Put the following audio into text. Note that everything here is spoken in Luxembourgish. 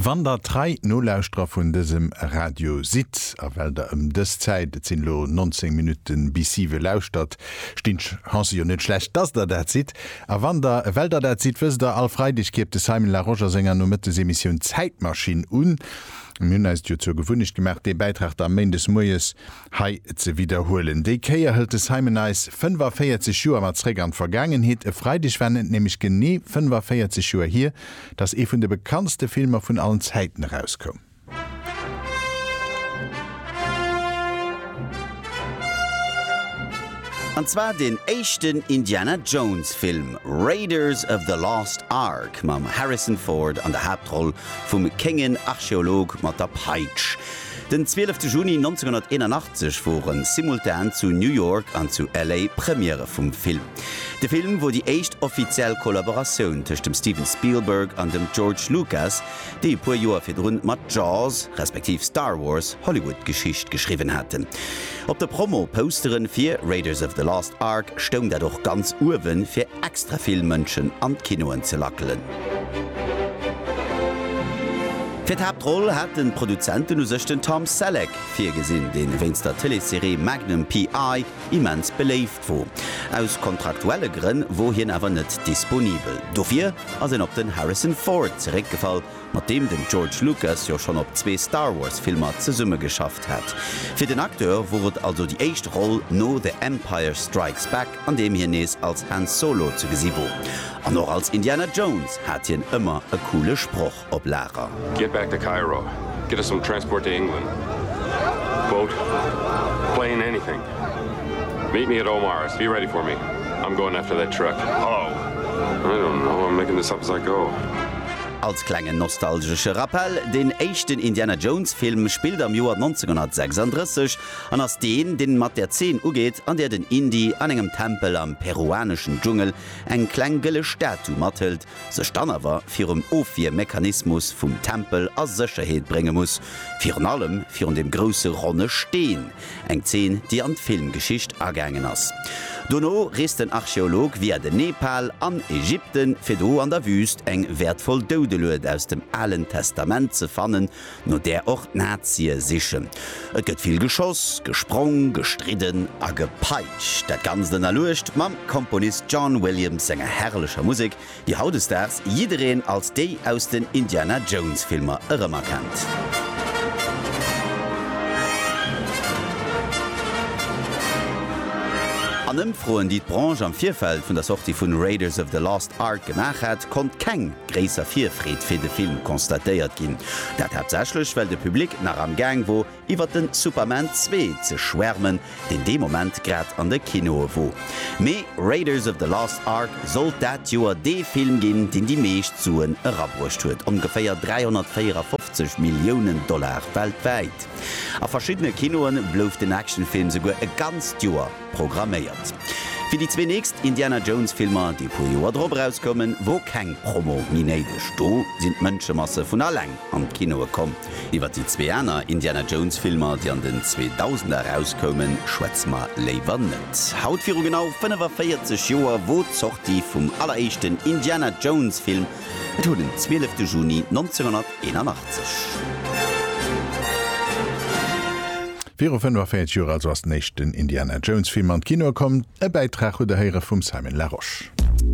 Wann der trei Nolauschterer vun dësem Radio sidd a well der ëm dës Zäit, et sinn elo 19 Minutten bis siwe, lauschtert, stinn d'Chancë jo net schlecht, dass der dat sidd. A wann der, well der dat sidd, wësst der, all Freideg kierpt de Simon Larosche a senger Nomëttesemissioun Zäitmaschinn un. Mir hunn eis et jo zur Gewunnecht gemaach, dee Bäitrag da méindes moies Hei ze widderhuelen. Déi Kéier hëlt de Simon eis 45 Joer mat zréck an d'Vergaangenheet. E Freideg waren et nämlech genee 45 Joer hier, datt ee vun de bekanntste Filmer vun allen Zäiten erauskoum. An zwar deen éischten Indiana Jones Film, Raiders of the Lost Ark, mam Harrison Ford an der Haaptroll vum kéngen Archeolog mat der Peitsch. Den 12 Juni 1981 wore simultan zu New York an zu LA Premierë vum Film. De Film wor déi éischt offiziell Kollaboratioun tëscht dem Steven Spielberg an dem George Lucas, déi e puer Joer virdrun mat Jaws, respektiv Star Wars, Hollywood-Geschicht geschriwwen haten. Op de Promo-Pousteren fir Raiders of the Lost Ark stoung dat och ganz uewen, fir extra vill Mënschen an d'Kinoen ze lackelen. Fir d'Haaptroll hat den Produzenten u sech den Tom Selleck virgesinn, deen wéinst der Tëleesserie Magnum PI. immens beléift wor. Aus kontraktuelle Grënn wor hien awer net disponibel, dofir ass een op den Harrison Ford zeréckgefall, mat deem den George Lucas jo schonn op zwee Star Wars Filmer zesumme geschafft hat. Fir den Acteur wor et also déi éischt Roll no The Empire Strikes Back an deem hien nees als Han Solo ze gesi wor. An och als Indiana Jones hat hien ëmmer e coole Sproch op Lager. Get back to Cairo, get us some transport to England, boat, plane, anything, meet me at Omar's, be ready for me, I'm going after that truck, hello, I don't know, I'm making this up as I go. Als klengen nostalgesche Rappell, Deen éischten Indiana Jones Film spillt am Joer 1936 an ass deen, deen mat der Zeen ugeet, an där den Indy an engem Tempel am peruaneschen Dschungel eng kleng gëlle Statu mathëlt, sech dann awer virum Ofwiermechanismus vum Tempel a Sécherheet brénge muss, virun allem virun dem grousse ronne Steen, Eng Zeen, déi an d'Filmgeschicht agaangen ass. Dono reest den Archeolog via den Nepal an Ägypten, fir do an der Wüüst eng wäertvoll Doudelued aus dem Alen Testament ze fannen, no där och d'Nazie sichen. Et gëtt vill geschoss, gesprong, gestridden a gepeitscht. Dat Ganzt ënnerluecht mam Komponist John Williams senger herrlecher Musek, déi hautdesdaags jiddereen als déi aus den Indiana Jones Filmer erëmerkennt. An Ëmfroen, déi d'Branche am Virfeld vun der Sortie vun Raiders of the Lost Ark gemaach hat, konnt keng gréisser Virfreed fir de Film constatéiert ginn. Dat haaptsächlech, well de Public nach am Gaang wor, iwwer den Superman 2 ze schwärmen, deen dee Moment grad an de Kinoe wor. Mee Raiders of the Lost Ark sollt dat Joer dee Film ginn, deen déi meescht Suen erabruecht huet, ongeféier 354 Milliounen Dollar weltwäit. A verschiddene Kinoe blouf den Actionfilm souguer e ganzt Joer. programméiert. Fir déi zwee nächst Indiana Jones Filmer, déi e puer Joer drop erauskoumen, wor keng Promo méi néideg. Do sinn d'Mënschemasse vun alleng an d'Kinoe komm. Iwwer déi zwee aner Indiana Jones Filmer, déi an den Zweedausender erauskoumen, schwätze mer léiwer net. Haut viru genau 45 Joer wor d'Sortie vum alleréischten Indiana Jones Film, et huet en 12 de Juni 1900. 81. Viru 45 Joer also ass den éischten Indiana Jones Film an d'Kinoe komm. E Bäitrag hutt der héiere vum Simon Larosche.